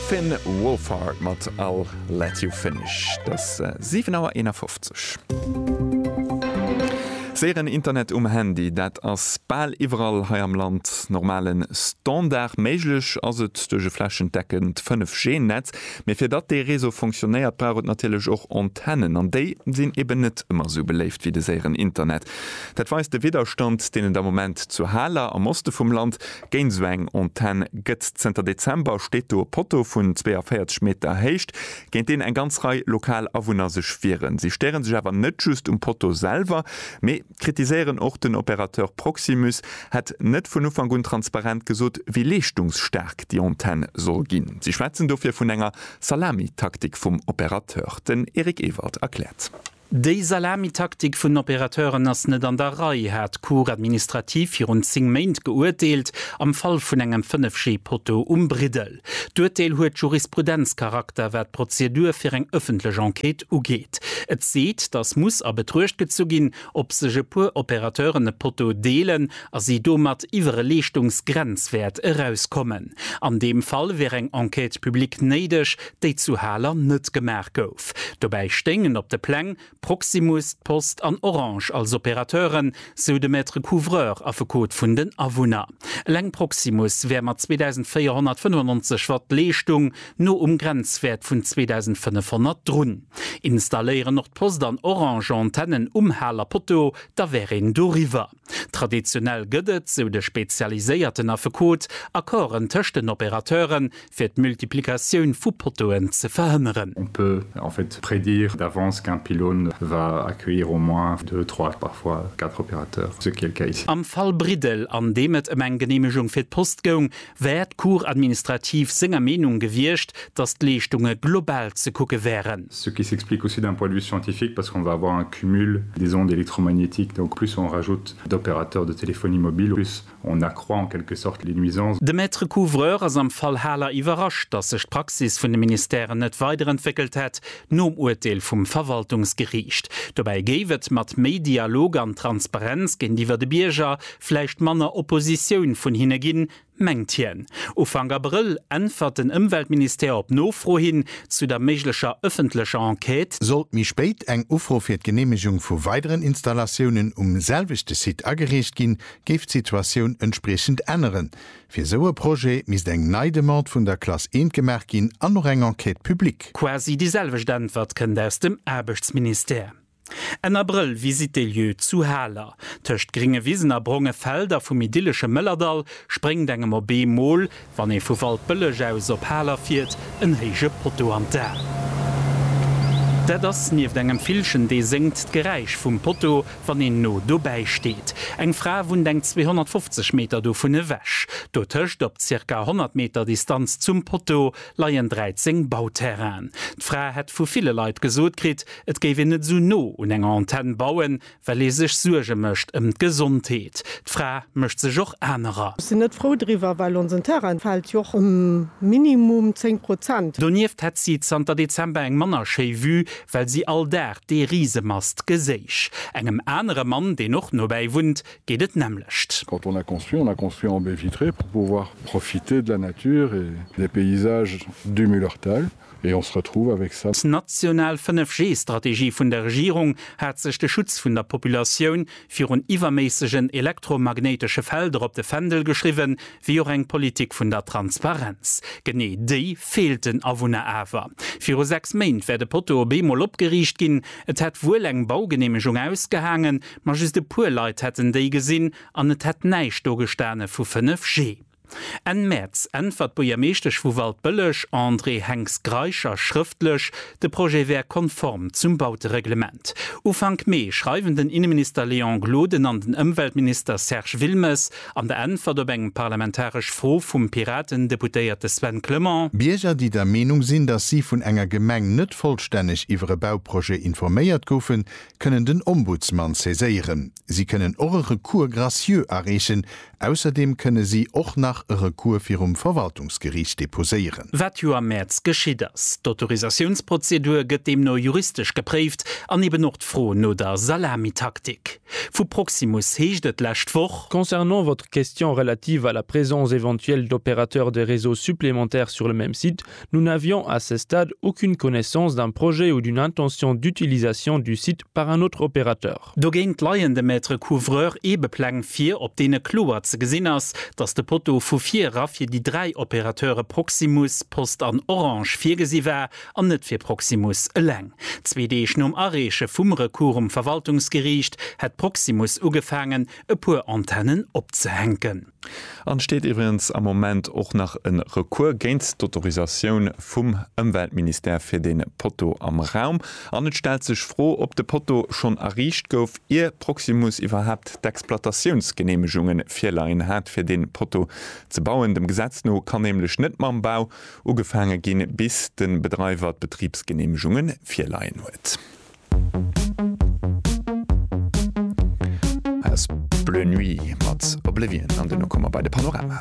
Finn Wolfhard mat I'll Let You Finish. Et ass 7 Auer 51. Séieren Internet um Handy, dat ass bal iwwerall hei am Land normale Standard. Méiglech ass et duerch e flächendeckend 5G Netz, mee fir datt dee Réseau fonctionnéiert, brauch et natierlech och Antennen. An déi sinn eben net ëmmer esou beléift wéi de séieren Internet. Dat weist de Widderstand, deen et am Moment zu Haler, am Oste vum Land, Géint esou eng Antenn gëtt zënter Dezember, steet do e Potto vun 42 Meter Héicht, géint deen eng ganz Rei lokal Awunner sech wieren. Si stéiere sech awer net just um Potto selwer, mee kritiséieren och, den Opérateur Proximus hätt net vun Ufank un transparent gesot, wéi leeschtungsstaark déi Antenn soll ginn. Si schwätzen dofir vun enger Salamitaktik vum Opérateur. Den Eric Ewald erkläert. Déi Salamitaktik vun den Opérateuren ass net an der Rei, hat d'Cour administrative virun 10 Méint geuerteelt am Fall vun engem 5G-Poteau um Briddel. D'Uerteel huet Jurisprudenzcharakter, wat d'Prozedur fir eng ëffentlech Enquête ugeet. Et seet, dass muss a Betruecht gezu ginn, ob sech e puer Opérateuren e Poteau deelen a si domat iwwer e Leeschtungsgrenzwäert erauskommen. An deem Fall wier eng Enquête publique néideg, déi zu Haler net gemaach gouf. Dobäi stéingen op de Pläng Proximus, d'Post an Orange als Opérateuren, sou de Maître couvreur, Affekot vun den Awunner. Eleng Proximus wär mat 2.495 Watt Leeschtung no um Grenzwäert vun 2.500 drun. Installéieren och d'Post an Orange Antennen um Haler Poteau, da wär een doriwwer. Traditionell gëtt et, sou de spezialiséierten Affekot, Accorden tëscht den Opérateuren, fir d'Multiplikatioun vu Pottoen ze verhënneren. On peut en fait prédire d'avance qu'un pylône va accueillir au moins deux, trois, parfois quatre opérateurs, ce qui est le cas ici. Am Fall Briddel, an deem et ëm eng Geneemegung fir d'Post goung, wär d'Cour administrative senger Meenung gewiescht, datt d'Leeschtunge global ze kucke wären. Ce qui s'explique aussi d'un point de vue scientifique parce qu'on va avoir un cumul des ondes électromagnétiques, donc plus on rajoute d'opérateurs de téléphonie mobile, plus on accroît en quelque sorte les nuisances. De Maître couvreur ass am Fall Haler iwwerrascht, datt sech d'Praxis vun de Ministèren net weiderentwéckelt hätt nom Urteel vum Verwaltungsgeriicht. Dobäi géif et mat méi Dialog an Transparenz géintiwwer de Bierger Vläicht manner Oppositioun vun hinne ginn, mengt hien. Ufank Abrëll äntwert den Ëmweltministère op Nofro hin zu der méiglecher ëffentlecher Enquête. Sollt méi spéit eng Ufro fir d'Geneemegung vu weideren Installatiounen um selwechte Site agereecht ginn, géif d'Situatioun entspriechend änneren. Fir esou e Projet misst eng nei Demande vun der Classe I gemaach ginn an och eng Enquête publique. Quasi déi selwecht Äntwert kënnt aus dem Aarbechtsministère. Enn Abrëll, Visite des lieux zu Haler. Tëscht gringe Wisen a bronge Felder vum idyllesche Mëllerdall spréngt engem op ee Mol, wann ee vu Waldbëlleg aus op Haler fiert, en héije Potto an d'A. Dat ass nieft engem Villchen, dee séngt, d'Geräisch vum Potto, wann een no dobäi steet. Eng Fra wunnt eng 250 Meter dovun ewech. Dotëscht, op zirka 100 Meter Distanz zum Potto, leien 13 Bauterrainen. D'Fra hätt vu ville Leit gesot kritt, Et géif een net esou no un enger Antenn bauen, well ee sech Suerge mécht ëm d'Gesondheet. D'Fra mécht sech och anerer. Ech sinn net frou driwwer, well onsen Terrain fält jo och ëm minimum 10 Prozent. Donieft hätt si zanter Dezember eng manner schéi Vue, well si all Dag dee Risemast geséich. Engem anere Mann, deen och nobäi wunnt, geet et d'nämmlecht. Quand on a construit, on a construit en baies vitrées pour pouvoir profiter de la nature et des paysages du Mullerthal. Et on se retrouve avec ça. D'national 5G-Strategie vun der Regierung hat sech de Schutz vun der Populatioun virun iwwerméissegen elektromagnéitesche Felder op de Fändel geschriwwen, wéi och eng Politik vun der Transparenz. Genee déi feelt den Awunner awer. Viru sechs Méint wär de Poteau op eemol opgeriicht ginn. Et hätt wuel eng Baugeneemegung ausgehaangen, ma just e puer Leit hätten déi gesinn an et hätt näischt do gestane vu 5G. Enn Mäerz äntwert d'Buergermeeschtesch vu Waldbëlleg, Andrée Henx-Greischer, schrëftlech, de Projet wär konform zum Bautereglement. Ufank Mee schreiwen den Inneminister Léon Gloden an den Ëmweltminister Serge Wilmes an der Äntwert op eng parlamentaresch Fro vum Piraten-Deputéierte Sven Clement, Bierger, déi der Meenung sinn, datt si vun enger Gemeng net vollstänneg iwwer e Bauprojet informéiert goufen, kënnen den Ombudsman saiséieren. Si kënnen och e Recours gracieux areechen. Ausserdeem kënne si och nach e Recours virum Verwaltungsgeriicht deposéieren. Wat jo am Mäerz geschitt ass. D'Autorisatiounsprozedur gëtt deemno juristesch gepréift an eben och d'Fro no der Salamitaktik. Vu Proximus heescht et d'lescht Woch, Concernant votre question relative à la présence éventuelle d'opérateurs de réseaux supplémentaires sur le même site, Nous n'avions à ce stade aucune connaissance d'un projet ou d'une intention d'utilisation du site par un autre opérateur. Dogéint leien dem Maître couvreur Eebepläng vir, op deene kloer ze gesinn ass, datt de Poteau vu vir era fir déi dräi Opérateure Proximus, Post an Orange virgesi war an net fir Proximus eleng. Zwee Deeg nom Areeche vum Recours um Verwaltungsgeriicht hätt Proximus ugefaangen, e puer Antennen opzehänken. An steet iwwregens am Moment och nach en Recours géint d'Autorisatioun vum Ëmweltministère fir den Poteau am Raum. An et stellt sech Fro op de Poteau schonn erriicht gouf ier Proximus iwwerhaapt d'Exploitatiounsgeneemegungen virleien hat fir den Poteau ze bauen. Dem Gesetz no kann nämlech net mam Bau ugefaange ginn bis den Bedreiwer d'Betriebsgeneemegungen virleien huet. Aus Bleu Nuit mat Oblivion an duerno komme mer bei de Panorama.